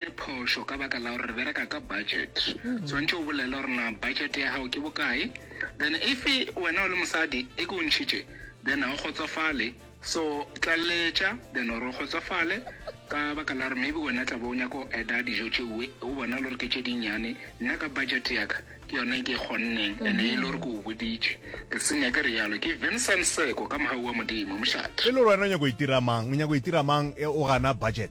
Ke phošo ka baka la gore re bereka ka budget. Swantše o bolele gore na budget ya gago ke bokae, then if wena o le mosadi e ke o ntšhitše then ga o kgotsofale, so tlaleletša then gore o kgotsofale ka baka la gore maybe wena tla bo o nyaka go adda dijo tšeue o bona le gore ke tše dinnyane, nna ka budget ya ka ke yona e ke e kgonneng and e le gore ke o boditše ke se nyake realo. Ke Vincent Seko ka mogau wa Modimo, mošate. E le gore wena o nyaka go itira mang, o nyaka go itira mang ge o gana budget?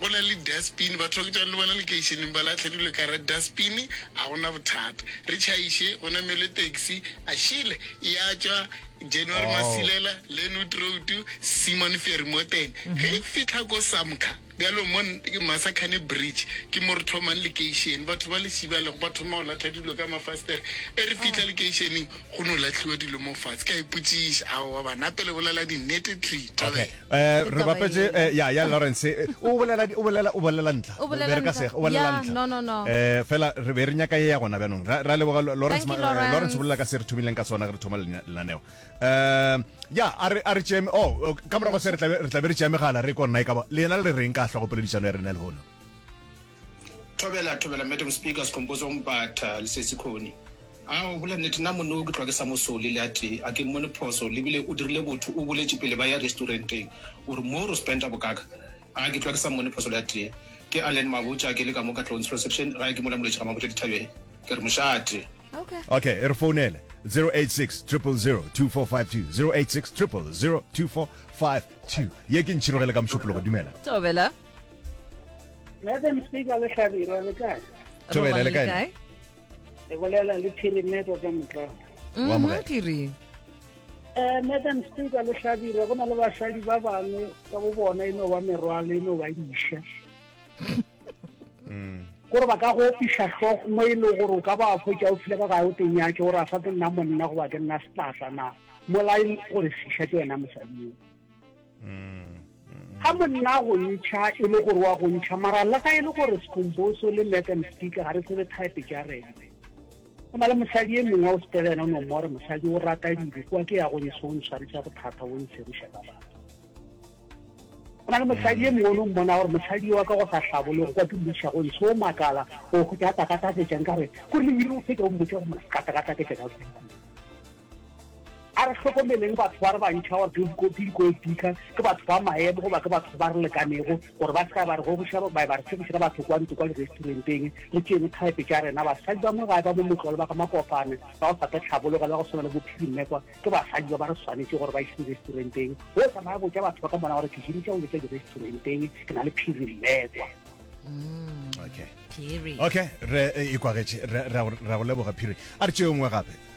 Go na le dustbin, batho ba ke tšwang le bona lekeišeneng ba lahle dilo ka gara dustbin, a go na bothata. Re tšhaiše, go namelwe taxi, a šele, e a tšwa January Masilela, Lenwood Road, Simon Ferry mo teng. Ge e fihla ko Samka, bjalo mo Masakhane Bridge, ke mo re thomang lekeišene. Batho ba le šibalego ba thoma go latlha dilo ka mafastere. Ge re fihla lekeišeneng, go no lahliwa dilo mo fatshe. Ka ipotšiša, aowa banna, pele bolela dinnete, Tree, thabela. Eh, re bapetse eh, ya ya Lawrence eh, o bolela o bolela o bolela ntla O bolela Be re ka ntla. sega, o bolela Yeah, ntla no, no, no. eh fela re be re nyaka ye ya gona bjanong ra ra leboga Lo- Lawrence Thank you, ma- eh, Lawrence. Lawrence o bolela ka se re thomileng ka sona ge re thoma lena- lenaneo eh ya a re a re tšeme oh oh, ka morago se re tla be- re tla be re tšea megala re ko nna e ka ba lena le reng ka hlogopoledišano ya rena le hono Thobela, thobela, Madam Speaker, Skhumbuzo Mbatha, Lesesi Khoni. A o bola nnete, nna monne o ke tloga ke sa mo sole le a tee, a ke mmone phoso, lebile o dirile botho, o boletše pele ba ya restauranteng gore moo ro spenta bokaka, a ke tloga ke sa mmone phoso le a tee. Ke Allen Mabotja, ke le ka mo ka Tlontsho Reception, gae ke mola Molwetši Ramabotja dithabeng, ke re mošate. Ok, e re founele, 086 000 2452, 086 000 2452, ye ke ntšhirogele ka mošupologo, dumela. Thobela. Madam Speaker le Hlabirwa le kae? Thobela le kae? Re bolela le Phirimeko ka motlao. Wa mo kae? Phiri. Eh Madam Speaker le Hlabirwa go na le basadi ba bangwe ka bo bona e no ba merwalo e no ba diša. gore ba ka go opisa tlhogo mo e le gore o ka ba fo tša o file ka ga o tenyake gore a sa ke nna monna goba ke nna setlasa na molae gore fiša ke wena mosadi Ga monna a go ntšha e le gore wa go ntšha, mara le ga e le gore Skhumbuso le Madam Speaker ga re tsebe type tša rena. Go na le mosadi e mongwe o sepela yena o no more mosadi o rata dilo kwa ke ya go ntšha o ntshwaretša bothata o ntsheriša ka batho. Go na le mosadi e mongwe o no mmona gore mosadi wa ka go sa hlabolego kwa ke mmuša go ntšha o makala o go tša takatafetša nka re ko le o fetša o mmotša gore makatakatafetša ka kuku. a re hlokomeleng batho ba re bantšha gore ke dikopi dikoepika ke batho ba maemo goba ke batho ba re lekanego gore ba seka ba re gogoša ba ba re tshegisa batho kwa ntlo kwa diresturenteng re tšeeng thaepe tša rena basadi ba mo gae ba mo motlole ba ga makopane ba go sate tlhabologa le go tshwana le bophiri mmekwa ke basadi ba ba re swanetše gore ba ise diresturenteng go tsamaya botša batho ba ka mona gore ke jedi tša go jetša diresturenteng ke na le phiri mmekwa mm. okay okay re e kwagetše ra go leboga phiri a re tšeo nngwe gape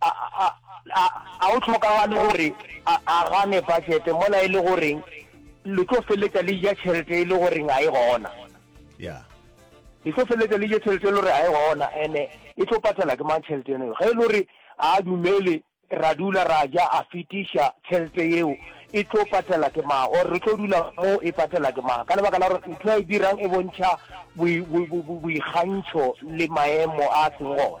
A, a, a, a go hlokagale gore a, a gane budget mola e le gore le tlo feleletša le ja tšhelete e le gore ga e gona. Yeah. Le tlo feleletša le ja tšhelete e le gore ga e gona, ene e tlo patela ke mang tšhelete eno? Ge e le gore ga a dumele, ra dula ra ja, a fetiša tšhelete yeo, e tlo patela ke mang? Or re tlo dula mo e patela ke mang? Ka lebaka la gore ntho a e dirang e bontšha boikgantšho le maemo a a seng gona.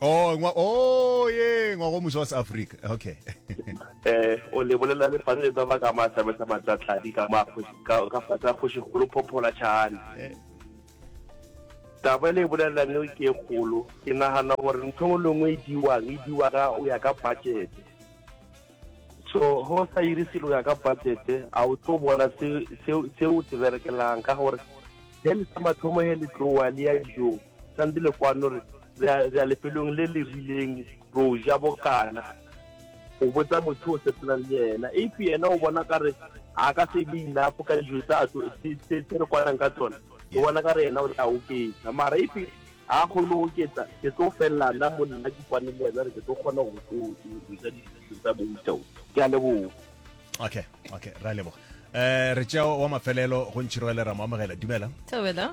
Oh, ngwa, oh, ye, ngwa go muso wa Africa. Okay. eh, o le bolela le fane le tsaba ka ma sabe sa matlatladi ka ma ka ka fa tsa khoshi kholo phophola chane. Eh. Taba le bolela ne ke kholo. Ke nahana gore ntho le ngwe e diwa, e diwa ka o ya ka budget. So, ho sa iri selo ya ka budget, a o tlo bona se se se o se berekelang ka gore. Then sa mathomo he le tloa le ya dijong. Santi le kwano re re a lefelong le le rileng ro ja bokana o botsa motho o sepelang le yena if yena o bona ka re a ka se be enough ka dijo tsa tlo se re kwanang ka tsone o bona ka re yena o tla oketsa mara if a kgone go oketsa ke tlo felela nna mo nna ke kwane le yena re ke tlo kgona go ja dijo tsa boutao ke a leboga okay okay ra leboga eh re tšeo wa mafelelo go ntšhirwelera mo amogela dumela dumela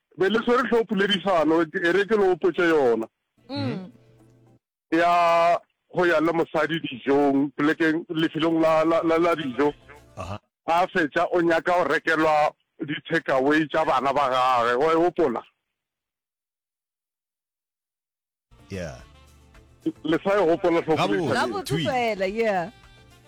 Be le swere tlhoo poledišano e re ke lo hopotše yona. Ya go ya le mosadi dijong polekeng lefelong la la la la dijo. A fetša o nyaka go rekelwa di takeaway tša bana ba gage wa e gopola. yeah le sa e gopola tlhokomgabotse fela yeah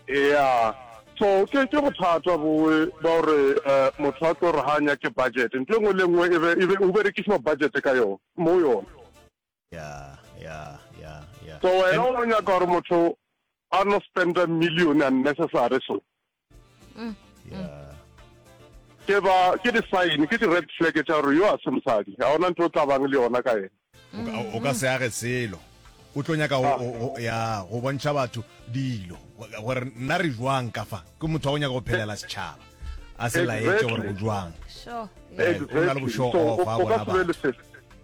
yeah so ke ke bothata boe ba gore um motho a tlo re ga a nyake budget nto e nngwe le nngwe e be o berekisiwa budget ka yone mo yone yeah yeah yeah yeah so wena o nyaka gore motho a no spenda million unnecessary so mm. yeah. ke ba ke di-sign ke di-red flag tša gore yo a se mosadi ga ona ntho o tlabang le yona ka ena o ka se age selo o tlo nyaka ah. ya go bontšha batho dilo gore nna re jwang ka fa ke motho wa go nyaka go phelela setšhaba a se laetse gore o jwang eh, o na le bošogo fa bona batho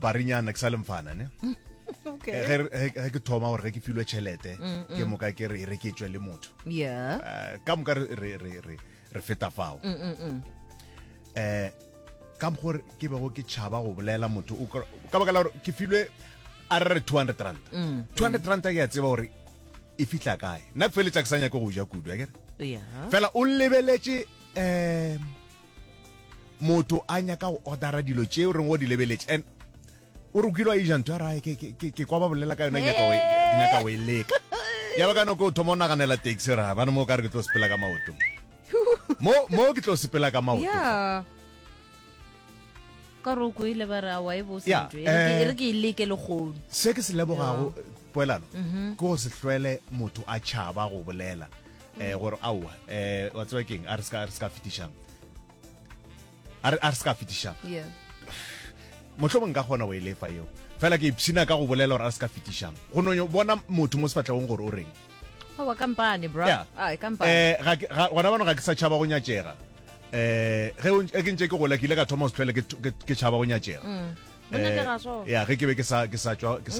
barenyana ke sa le mfana ne Okay. Eh, ge re- ge ge ke thoma gore ge ke filwe tšhelete Mm, ke moka ke re e reketswe le motho Yeah. Eh, ka moka re- re re- re- re feta fao Mm, mm, mm. eh ka mokgwa gore ke bego ke tšhaba go bolela motho o kra- ka baka la gore ke filwe a re re 200 rand Mm. 200 rand ke a tseba gore e fitlha kae nna ke feletsa ke sa nyake go ja kudu akere Yeah. fela o lebeletše um motho a nyaka go ordera dilo tše o reng o di lebeletše and o re kile wa eja ntho ya rae ke kwa ba bolela ka yona nyaka o e leka yalo ka nako o thoma o naganela taxi ra bane mo o ka re ke tlo sepela ka maoto mo ke tlo sepela ka maoto ka re o koile ba re a wa e bose ntho e re ke e leke le kgono se ke se lebogago poelano mhm. ke go se hlwele motho a tšhaba go bolela eh gore aowa eh wa tseba keng a re ska re ska fetišang a re a re ska fetišang yeah motlho mong ka gona go e lefa eo fela ke ipshina ka go bolela gore a re ska fetišang go no bona motho mo sefatlhegong gore o reng aowa kampane bro yeah. ah kampane eh ga ga gona bana ga ke sa tšhaba go nyatšega eh ge o ke ntse ke gola ke ile ka thoma go se tlhole ke tšhaba go nyatšega mm. ya ge ke be ke sa tswa ke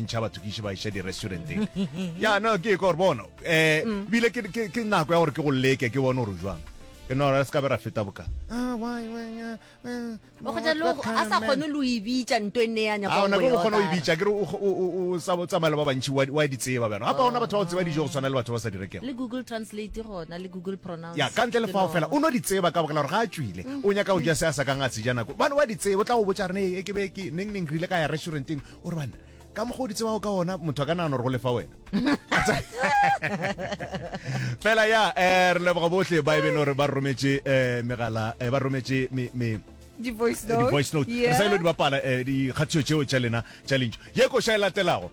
ntšha batho ke iše ba iša di-restauranteng ya no ke ekore bona um eh, mm. bile ke nako ya gore ke go leke ke bone gore jwang ke no ra se ka be ra feta boka ah, a sa kgone lo ibitsa nto e neanya ah, ona ke go kgona go ibitsa ke re o tsamaela ba bantšhi wa di tseba bjana gapa gona batho ba go tseba dijo go tshwana le batho ba sa di rekego le google translate gona le google pronoun Ya ka ntle le fao fela, o no di tseba ka bogela gore ga a tšwile. O nyaka go ja se a sa kang a se ja nako. Bane wa di tseba, o tla go botša rene, e ke be ke, neng neng re ile ka ya restauranteng. O re banna, ka mokgwa o di tsebago ka ona, motho a ka nagana gore go lefa wena. Fela ya, eh, re leboga bohle ba e beng gore ba rometše eh, megala, eh, ba rometše me, me, di-voice note re sa ile di bapala um dikgatiso tšeo tša lena tša lentšu ye koša e latelago